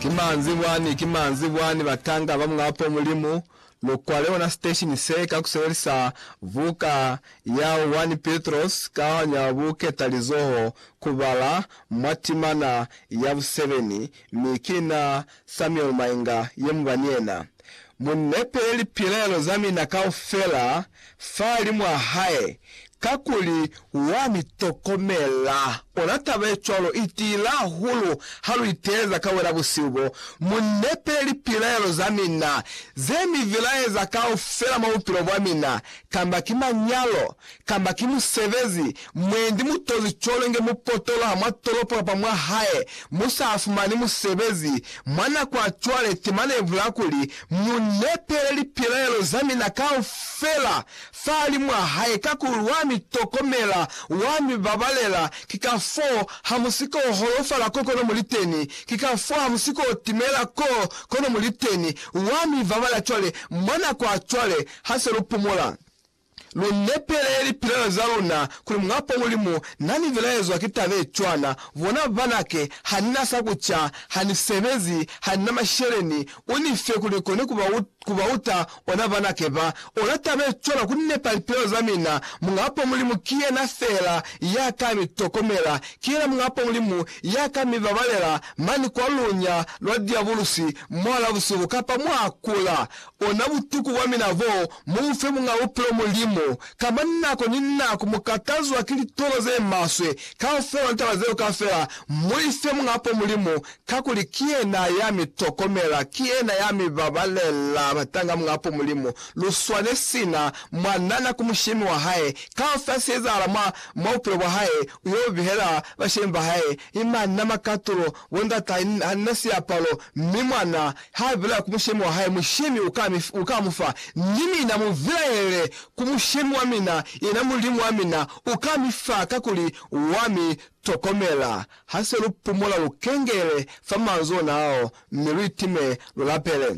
Ki manzi bwani, ki manzi bwani batanga ba Muñapo Mulimu, lu kwale ona siteshini se ka ku sebelisa buka ya 1 Petros ka nya buketalizoho ku bala mwa timana ya busebeni, mi ki na Samuel Mainga ye mu ba ni yena. Mu nepe lipilaelo za mina kaufela fahali mwa hae, kakuli wa mi tokomela. Ona taba ye cwalo i tiile hahulu ha lu iteeleza ka wena busihu bo, Mu nepe lipilaelo za mina, ze mi vilaeza kaufela mwa bupilo bwa mina, kamba ki manyalo, kamba ki musebezi, mwendi mutozi cwalo nge mupotolo ha mwa tolopo kapa mwa hae mu sa fumani musebezi mwa nako ya cwale, temana ye bulaa kuli, Mu nepele lipilaelo za mina kaufela fahali mwa hae, kakuli wa mi tokomela, wa mi babalela, ki ka foo ha mu si k'o holofala ko kono mu li teni, ki ka foo ha mu si k'o timela ko kono mu li teni, wa mi babalela cwale, mwa nako ya cwale, ha se lu pumula. Lu lepele lipilelo za luna kuli Muñ'a-Pwa Mulimu na ni vilaezwa ki taba ye cwana, Bona, banake, ha ni na sa ku ca, ha ni sebezi, ha ni na masheleni, u ni fe kuli ni kone ku ba, ku ba uta ona banake ba. Ona taba ye cwana, ku nepa lipilelo za mina. Muñ'a-Pwa Mulimu ki yena fela ya ka mi tokomela. Ki yena Muñ'a-Pwa Mulimu ya ka mi babalela mane kwa lunya lwa diabulusi mwa la busihu kapa mwa kula. Ona butuku bwa mina boo Mufe Muñ'a Bupilo Mulimu, kamba nako ni nako mukatazwa ki litono zemaswe, kaufela litaba zeo kafela, muife Muñ'apo Mulimu, kakuli ki yena ya mi tokomela, ki yena ya mi babalela. Batanga Muñ'apo Mulimu, luswane sina mwanana ku mushemi wa hae, kaufela seezahala mwa, mwa bupilo bwa hae, uyo bihela bashemi ba hae, mi manna makatulo, Bo ndata, ha nina siapalo, mi mwana ha vilaela ku mushemi wa hae, mushemi u ka mu fa, ni mina mu vilaele ku mushemi wa mina, yena Mulimu wa mina u ka mi fa, kakuli wa mi tokomela. Ha se lu pumula, lu kengele fa manzwi ona ao, mi lu itime, lu lapele.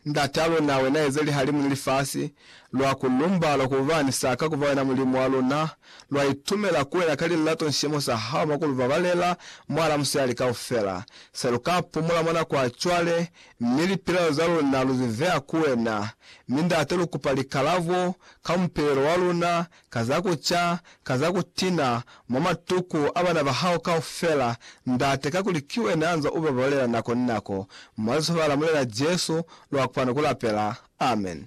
Ndata luna, wena eze lihalimu ni lifasi, lwa ku lumba lwa ku ba ni saka ku ba wena Mulimu wa luna, lwa itumela ku wena ka lilato ni sicemo sa hao mwa ku lu babalela mwala musali kaufela. Se lu ka pumula mwa nako ya cwale, mi lipilaelo za luna lu zi veya ku wena. Mi Ndate lu kupa likalabo ka mupilelo wa luna ka za ku ca, ka za ku tina mwa matuku a bana ba hao kaufela, Ndate, kakuli ki Wena ya nzwa u ba bolela nako ni nako. Mwa Lisobala Mulena Jesu, lwa kona ku lapela. Amen.